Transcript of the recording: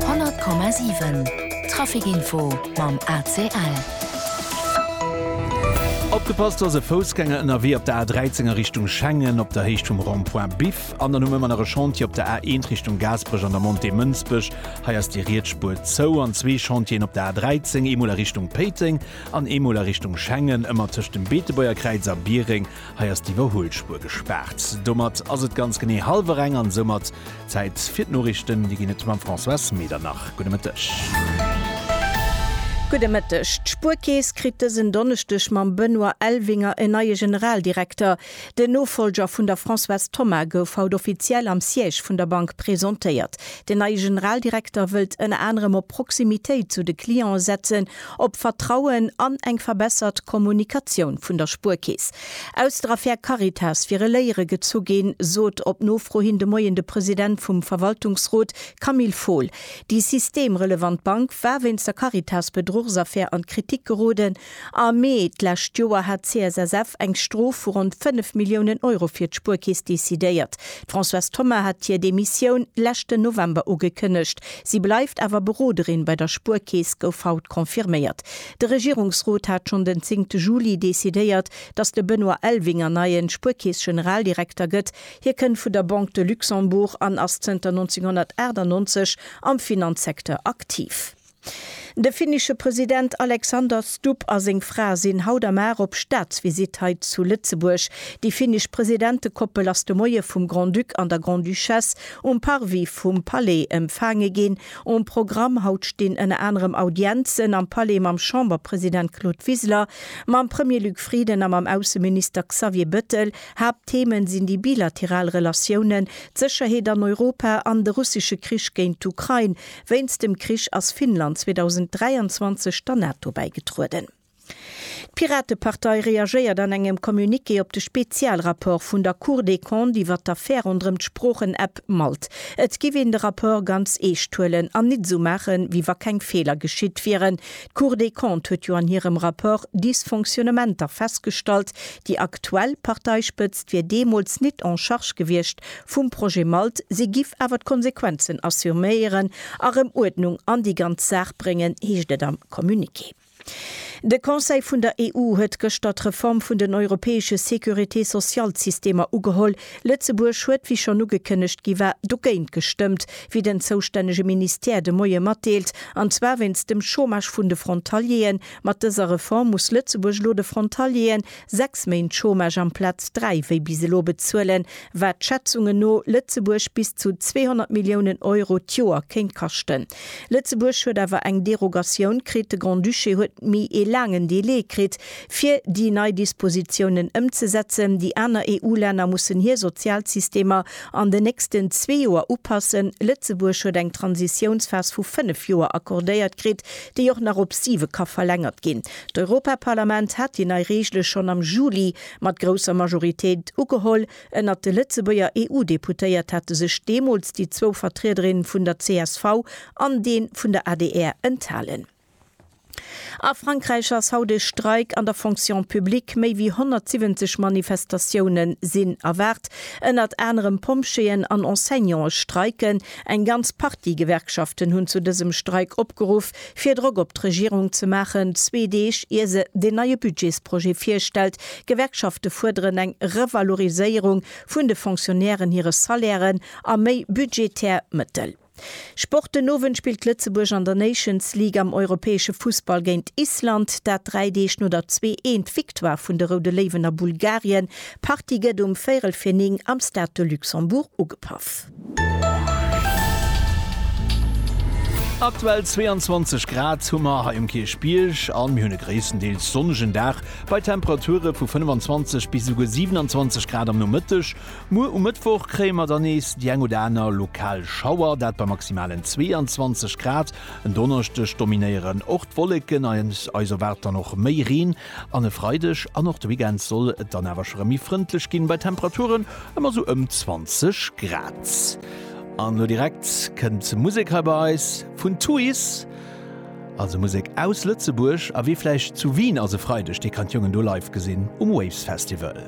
100,7 Trafic info mam ACL. Opgepasst, do ass e Foussgänger ënnerwee op der A13 a Richtung Schengen op der Héicht vum Rond-point Biff. An dann hu mir ëmmer nach e Chantier op der A1 Richtung Gaasperech an der Montée Mënsbech. Hei ass déi riets Spuer zou. An zwee Chantieren op der A13, eemol a Richtung Péiteng an eemol a Richtung Schengen, ëmmer tëscht dem Beetebuerger Kräiz a Biereng. Hei ass d'Iwwerhuelspuer gespaart. Domat ass et ganz genee hallwer eng an soumat Zäit fir d'Noriichten. Déi ginn et mam Françoise Medernach. Gudde Mëtteg. Gudde Mëtteg. D'Spuerkeess kritt dësen Donneschdeg mam Benoît Elvinger en neie Generaldirekter. Den Nofollger vun der Françoise Thoma gouf haut offiziell am Siège vun der Bank presentéiert. Den neie Generaldirekter wëllt ënner anerem op Proximitéit zu de Clienten setzen op Vertrauen an eng verbessert Kommunikatioun vun der Spuerkeess aus der Affär Caritas fir e Léiere gezu ginn, sot op Nofro hin de Moien de President vum Verwaltungsrot Camille Fohl. Déi systemrelevant Bank war wéinst der Caritas-Bedruchsaffär an d'Kritik geroden. Am Mee d'lescht Joer hat d'CSSF eng Strof vu ronn 5 Milliounen Euro fir d'Spuerkeess decidéiert. D'Françoise Thoma hat hir Demissioun leschten November ugekënnegt. Si bleift awer Beroderin bei der Spuerkeess, gouf haut confirméiert. De Regierungsrot hat schonn den zéngte Juli decidéiert, datt de Benoît Elvinger neien Spuerkeess-Generaldirekter gëtt. Hie kënnt vun der Banque de Luxembourg an ass zënter 1998 am Finanzsecteur aktiv. De finnesche President Alexander Stubb a seng Fra sinn haut am Ar op Staatsvisitt hei zu Lëtzebuerg. Déi finnesch Presidentekoppel ass de Moie vum Grand-Duc an der Grande-Duchesse Um Parvis vum Palais empfaange ginn. Um Programm haut stinn ënner anerem Audienzen am Palais mam Chamberpresident Claude Wiseler, mam Premier Luc Frieden a mam Ausseminister Xavier Bëttel. Haaptthemen sinn déi bilateral Relatiounen, d'Sécherheet an Europa an de russesche Krich géint d'Ukrain. Wéinst dem Krich ass Finnland 2023 der NATO bäigetrueden. D'Piratepartei reagéiert an engem Communiqué op de Spezialrapport vun der Cour des Comptes iwwer d'Affär ronderëm d'Sproochen-App Malt. Et giff een de Rapport ganz eescht huelen an nit esou maachen, wéi wa keng Feeler geschitt wieren. D'Cour des Comptes huet jo an hirem Rapport Dysfonctionnementer festgestallt. Déi aktuell Parteispëtzt wier deemools nit en charge gewiescht vum Projet Malt, si giff awer d'Konsequenzen assuméieren a rëm Uerdnung an déi ganz Saach bréngen, heescht et am Communiqué. De Conseil vun der EU huet gëschter d'Reform vun den europäesche Sécurité-sociale-Systemer ugeholl. Lëtzebuerg huet, wéi schonn ugekënnegt gi war, dogéint gestëmmt, wéi den zoustännege Ministère de Moie matdeelt, an zwar wéinst dem Chômage vun de Frontaliere. Mat dëser Reform muss Lëtzebuerg elo de Frontalieren, Sechs Méint Chômage amplaz dräi wéi bis elo bezuelen, wat Schätzungen no Lëtzebuerg bis zu 200 Milliounen Euro d'Joer kéint kaschten. Lëtzebuerg huet awer eng Derogatioun kritt, de Grand-Duché huet méi ee laangen Delai kritt, fir déi nei Dispositiounen ëmzesetzen. Déi aner EU-Länner mussen hir Sozialsystemer an den nächsten zwee Joer upassen. Lëtzebuerg huet eng Transitiounsphas vu fënnef Joer accordéiert kritt, déi och nach op siwe ka verlängert ginn. D'Europaparlament hat déi nei Reegele schonn am Juli mat grousser Majoritéit ugeholl. Ënnert de Lëtzebuerger EU-Deputéiert hate sech deemools déi zwou Vertriederinne vun der csv an dee vun der adr enthalen. A Frankräich ass haut e Streik an der Fonction publique, méi wéi 170 Manifestatioune sinn erwaart. Ënnert anerem Pompjeeën an Enseignante streiken. Eng ganz Partie Gewerkschaften hunn zu dësem Streik opgeruff. fir Drock op d'Regierung ze maachen, zwee Deeg ier se den neie Budgetsprojet virstellt. D'Gewerkschafte fuerderen eng Revaloriséierung vun de Fonctionnairen hire Salairen a méi budgetär Mëttel. Sport, Den Owend spillt Lëtzebuerg an der Nations League am europäesche Fussball géint Island, dat dräi Deeg no der zwee eent Victoire vun de Roude Léiwen a Bulgarien. D'Partie gëtt um véirel fir 9 am Stade de Luxembourg ugepaff. Aktuell 22 Grad hu mer hei um Kierchbierg an mir hunn e gréisstendeels sonnegen Dag bei Temperature vu 25 bis esouguer 27 Grad am Nomëtteg. Muer um Mëttwoch kréie mer dann nees déi eng oder aner lokal Schauer, dat bei maximalen 22 Grad. En Donneschdeg dominéieren och d'Wolleken an eis erwaart dann och méi Reen. An e Freideg an och de Weekend soll et dann awer scho rem méi frëndlech ginn, bei Temperaturen ëm a sou ëm 20 Grad. An lo direkt kënnt Musek hei bei eis vun Tuys, also Musek aus Lëtzebuerg. A wee vläicht zu Wien ass e Freideg, dee kann d'Jongen do live gesinn um Waves Festival.